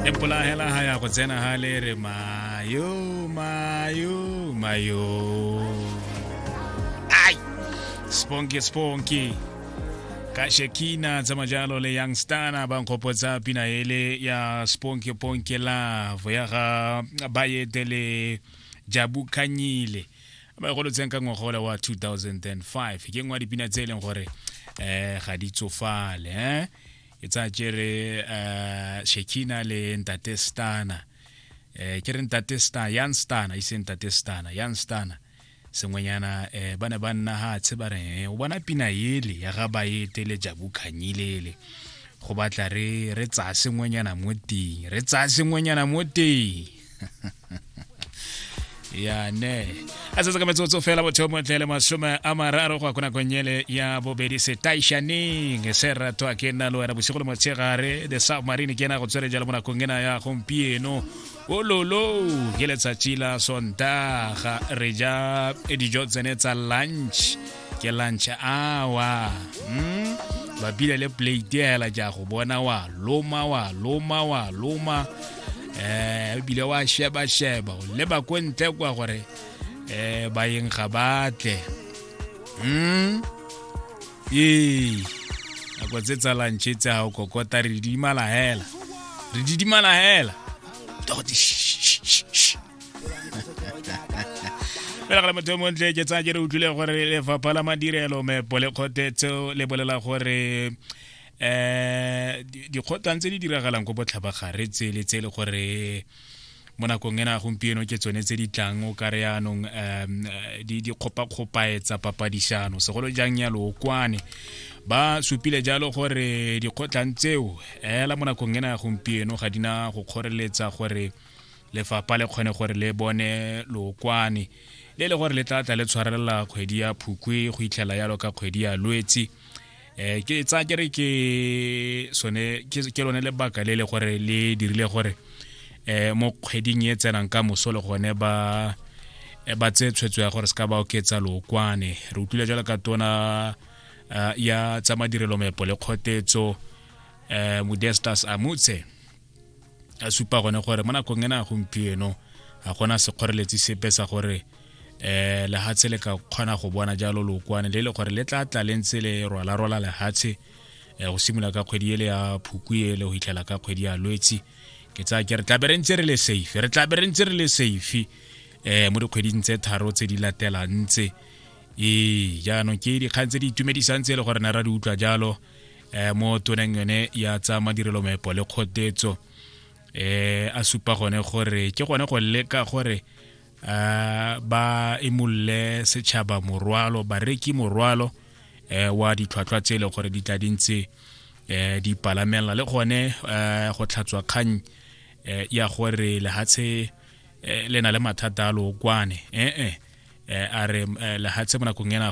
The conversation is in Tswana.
e mpola hela ha ya go tsena ha le re mayo mayo mayo ai sponky sponky ka shekina tsa majalo le young stana ba nkgopotsa pina ele ya sponky ponky love ya ga bayete le jabu kanyile ba e golotseng ka ngwaga ola wa 2005 ke nngwe ya dipina tse e leng gore um ga di tsofale um ke tsaya kere uh, shekina le ntate stana eh ke re ntate stana yan stana ise ntate stana yan stana sengwenyana eh ba ne ba nna ha tshe ba re o bona pina yele ya ga baete le jabu khanyilele go batla re re tsaya sengwenyana mo teng re tsaya sengwenyana mo teng yane a setse ka metsotso fela botho mo tlele masome a mararo go ya ko nakong ele ya bobedi setaišaneng se rato a ke nna le wena bosigo le motshegare the submarine ke ena go tswere jalo mo nakong ena ya gompieno ololo ke letsatsi la sontaga re ja dijo tsene tsa lunch ke lunch awa mm? babile le plate hela ja go bona wa loma wa loma wa loma eh ebile wa sheba sheba o leba ko ntle kwa gore eh bayeng ga batle mm ee nako tse tsa lantšhe tse ga o kokota re didimala hela re didimala hela fela gale motho montle ke tsaya ke re utlwile gore lefapha la madirelo mepo le kgothetseo le bolela gore um dikgotlang tse di diragalang ko botlhabagare tsele tse e le gore mo nakong ena gompieno ke tsone tse di tlang o kare yaanong um di kgopakgopaetsa papadishano segolo jang ya lookwane ba supile jalo gore dikgotlang tseo ela mo nakong ena ya gompieno ga di na go kgoreletsa gore lefapha le kgone gore le bone lookwane le le gore le tla tla le tshwarelela kgwedi ya phukwe go itlhela yalo ka kgwedi ya lwetsi um ke tsa ke re ke sone ke lone lebaka le le gore le dirile gore um mo kgweding e tsenang ka moso le gone ba eh, ba tse tshwetso ya gore se ka ba oketsa lookwane re utlwile jalo ka tona eh, ya tsa madirelo mepo le kgotetso um modestas amutse a supa gone gore mo nakong ena gompieno ga gona sekgoreletsi sepe sa gore eh lehatshe le ka kgona go bona jalo lookwane le le gore le tla tla le ntse le rwala rwala lehatshe eh, go simolola ka kgwedi ele ya phuku ele go hitlhela ka kgwedi ya lwetsi ke tsaya ke re tlabe re ntse re le safe re tlabe re ntse re le safe eh mo dikgweding tse tharo tse di latelang tse ee jaanong ke dikgang tse di itumedisang tse e le gore ne ra di utlwa jalo eh mo toneng yone ya tsa madirelo mepo le kgotetso eh a supa gone gore ke gone go leka gore eh, ba imolole setšhaba morwalo bareki morwalo eh, wa ditlhwatlhwa tse e leng gore di tla di ntse eh, di palamela le gone eh, go tlhatswa kgang eh, ya gore lehatshe eh, le na le mathata a lookwane ee eh, eh, eh, a re eh, lehatshe mo nakong ena